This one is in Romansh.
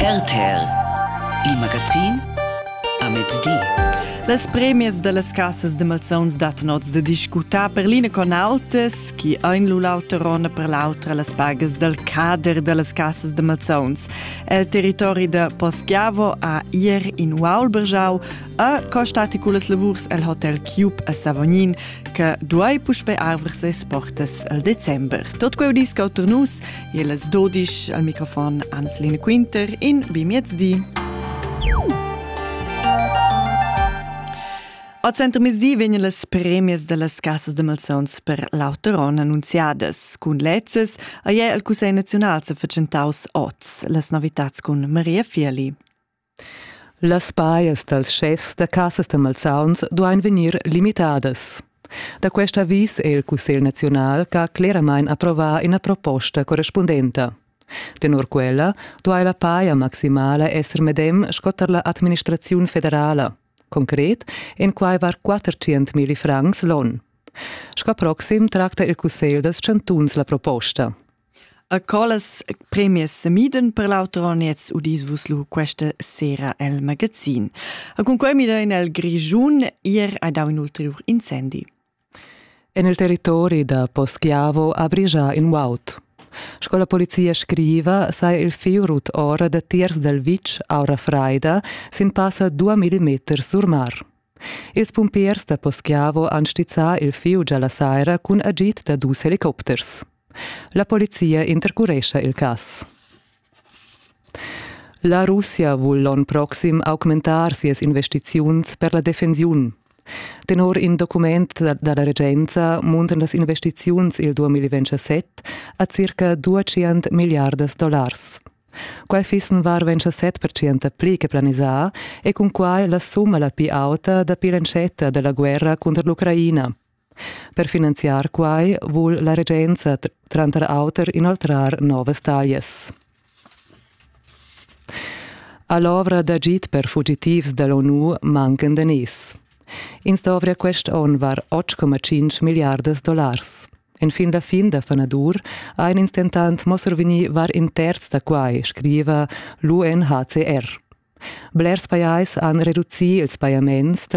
RTL Il magazin a mezdi. Las premias da las cassas de malsauns dattan oz da discutar per l'ina con autas, chi ein lu l'auter onn per l'autra las pagas dal cader da las cassas de malsauns. El territori de Poschiavo a ir in Ualbergiau a costati culas lavurs el hotel Cube a Savognin, che duai puspei arver ses portas al december. Tot queu disc auter nus E las 12 al microfon Anselina Quinter in Bimiezdi. A Center Mezdi vegnan las premias da las casas de malsauns per l'Auteron annunziadas. Cun lezzes ha il Cussegl naziunal sa fatschentaus oz las novitats cun Maria Fieli. Las pajas dals schefs da cassas da malsauns duain vegnir limitadas. Da quest avis è il Cussegl naziunal ch'ha cleramain approvà ina proposta correspundenta. Tenor quella duai la paja maximala esser medem sco tar la administraziun federala. Concret èn quai var 400.000 francs l'on. Sco proxim tracta il Cussegl dals chantuns la proposta. A collas premias semiden per l'auter oniez udis vus lu questa sera el magazin. A cun quei mida in el Grigiun ier ha dau in ulterior incendi. En il territori da Poschiavo ha brigia in uaut. Sco la polizia scriva, sa il fiu rut ora da tiers dal vitg aura freida sin passa dua millimeters sur mar. Ils pumpiers da Poschiavo han stizzà il fieu già la saira cun agid da dus helicopters. La polizia intercurescha il cass. La Russia vul l'onn proxim augmentar sias investiziuns per la defensiun. Tenor in document da la regenza muntan las investiziuns il 2027 a circa 200 miliardas dollars. Quai fissen varventscha set pertschient pli che planisà e cun quai la summa la pli auta dapi l'entschetta della guerra cunter l'Ucraina. Per finanziar quai vul la regenza tranter auter inoltrar novas taglias. All'ovra d'agid per fugitivs dall'ONU mancan daners. Ins dovria quest onn var 8,5 milliardas dollars. En fin da fin da fanadur ein ins dentant mo survegni var in terz da quai, scriva l'UNHCR. Blers pajais han reducì ils pajaments tra